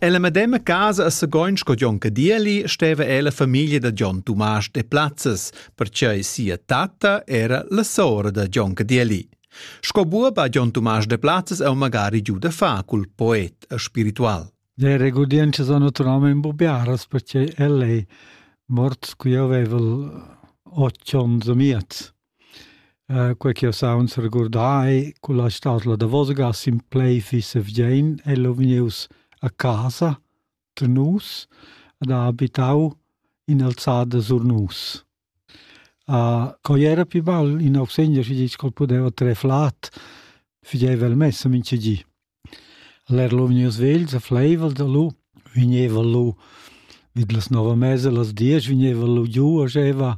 Ella medema casa a Sagoin sco Jon Cadieli steva ella famiglia da Jon Tumasch de Plazzes, pertgei sia tatta era la sora da Jon Cadieli. Sco buob ha Jon Tumasch de Plazzes eu magari giu da fa cul poet e spiritual. Le regudienze sono naturalmente imbubiaras perché ellei mort qui avevel 8 ons miez. Quei ch'jeu saunz regurdar culla stadla davosgas in plai fissa vgien ella vegnius a casa da nus ed ha habitau in'alzada sur nus. Quei era pi bel in Augsegner schi ditg ch'el pudeva trer flat, figeva el messa mintga di. El era lu vegnius vegls e fleivel da lu, vegneva lu vid las nova mesa las diesch vegneva lu giu e scheva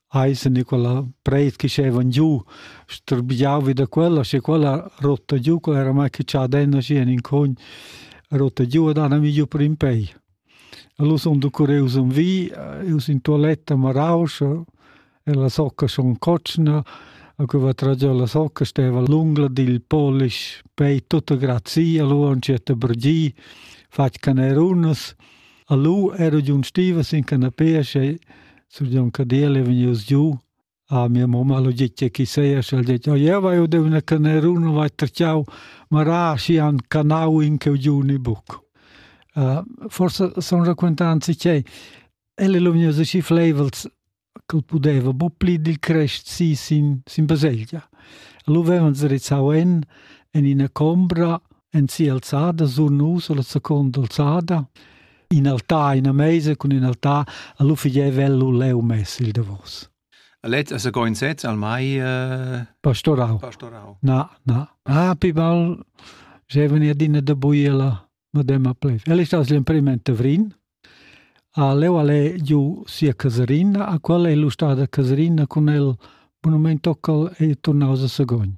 Eise Nicola Breit che schevan giu strbiau vi da quella, sche quella rotta giu, quella era mai che cha denna schi en in cogn rotta giu ed han mi giu per in pei. Allora son du cureus un vi, eus in toiletta maraus e la socca son cotschna, a cui va tragiò la socca steva lunga dil polish pei tutta grazii, allora on certa brgii, fatg canerunas, allora ero giun stiva sin canapea, sche Sur Jon Cadiel è vegnius giu a mia mamma, lo gitje chi seia și al detg, ja vai o dev na canerun, vai terciau, ma ra și han canau in cheu giu ni buc. Uh, forse son raquentanzi ch'ei, elle lo vegnius aschi flaivels ch'el pudeva bu pli dil crest si sin, sin baselgia. Lo vevan zerizzau en, en ina combra, en si alzada, sur nus, la seconda alzada, in altar in meisa cun in altar a lu figievel lu leu mess il davos Let as go in set al mai uh, pastorau. pastorau. Na, na. Ah, pi bal jeveni adina da buiela madema plev. El sta l'imprimimente vrin. A leu ale giu sia caserina, a qual è lu stada caserina con el monumento cal e tornaus a Sagogn.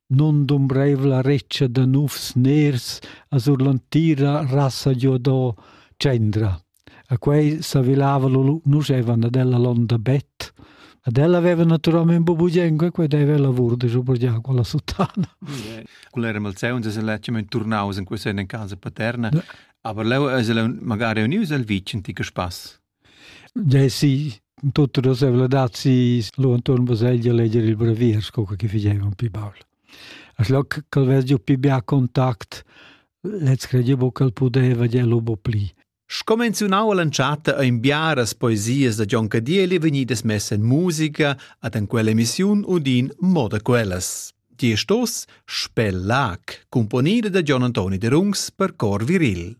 nundumbreivla retscha da nufs ners a sur l'antira rassa giu do tschendra. A quei s'avilava lu nuschevan ad ella londa bet. Ad ella aveva naturalmente bubugengo e quei deve lavur de giu per già con la sottana. Quel era malzeun se lecimen turnaus in quei sen in casa paterna. Ja. Aber leu es el magari unius al vicin ti spass. Desi tutte le svelazi lu intorno baselgia leger il brevier sco che figeva un pi baul. A schloc che vess giu pi bia contact, lez credevo che pudeva ge lu bo pli. Scomenziunau all'entschatta ein biaras poesias da Gion Cadieli vegnidas messa in musica ad en quell'emissiun udin moda quellas. Die Stoss Spellac, componida da Gian Antoni de Rungs per cor viril.